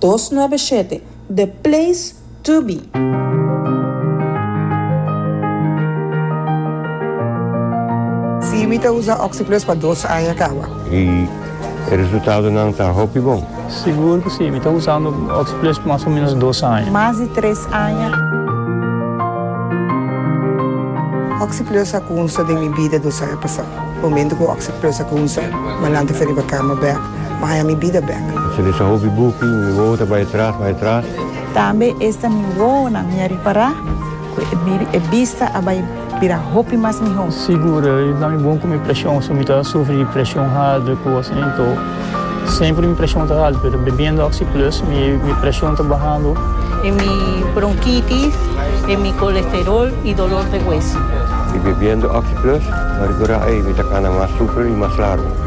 dos nuebe shete The Place to Be. Sí, mi ta usa Oxi-Plus pa dos aña kawa. I e resultadonan ta hopi bon. Sigur ku sí, mi ta usando Oxi-Plus pa mas o menos dos aña. Mas di tres aña. Oxi-Plus a kunsa den mi bida dos aña pasá. Momentu ku Oxi-Plus a kunsa, m'alanta fi riba kama bèk. Maya mi bida bek. Si mi sa hopi buki, mi wowo ta bai tras, bai tras. Tambe esta mi wowonan mi a ripará ku e bista a bai bira hopi mas mihó. Sigur, i ta mi bon ku mi preshon, so mi ta sufri di preshon haltu ku kos asin. Too, semper mi preshon ta haltu, pero bebiendo Oxyplus mi preshon ta bahando. E mi bronkitis, e mi kolesterol i dolor de hueso. I bebiendo Oxyplus, mi a rikorda, ei, mi ta kana mas super i mas largu.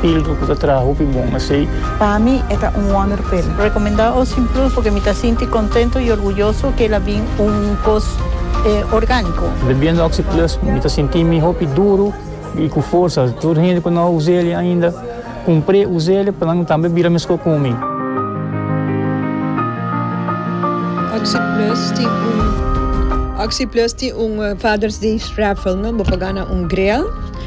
Pildo ku ta traha hopi bon asei. Pa mi e ta un wonder pil. Recomenda o sin plus porque mi ta sinti contento y orguyoso que el a bin un cos organico. Bebiendo Oxi Plus mi ta sinti mi hopi duro y cu forsa. Tur hende cu no a usel'e ainda cumpr'e usel'e pa nan tambe bira mescor cu mi. Oxi Plus tin un Oxi Plus tin un Father's Day raffle no bo por gana un grill.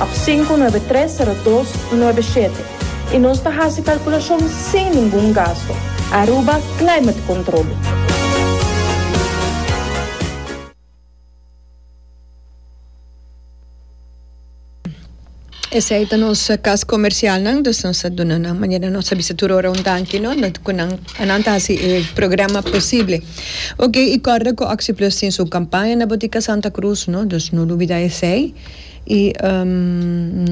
Ap sinku nuebe tres sero dos nuebe shete i nos ta hasi kalkulashon sin ningun gasto. Aruba Climate Control. Esei ta nos kas komersialnan dus nos a duna nan manera nos a bisa tur ora un danki no ku nan a nan ta hasi e programa posible oke i kòrda ku Oxi Plus tin su kampaña na Botica Santa Cruz no dus no lubida esei. I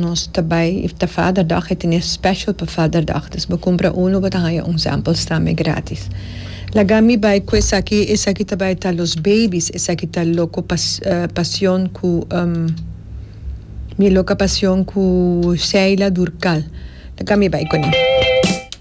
nos ta bai i ta father dog e tene special pa father dog dus bo kumpra uno bo ta haña un sample strambe gratis laga mi bai ku esaki esaki ta bai ta los babies esaki ta loko pa pasion ku mi loka pasion ku sheila durcal laga mi bai kuné.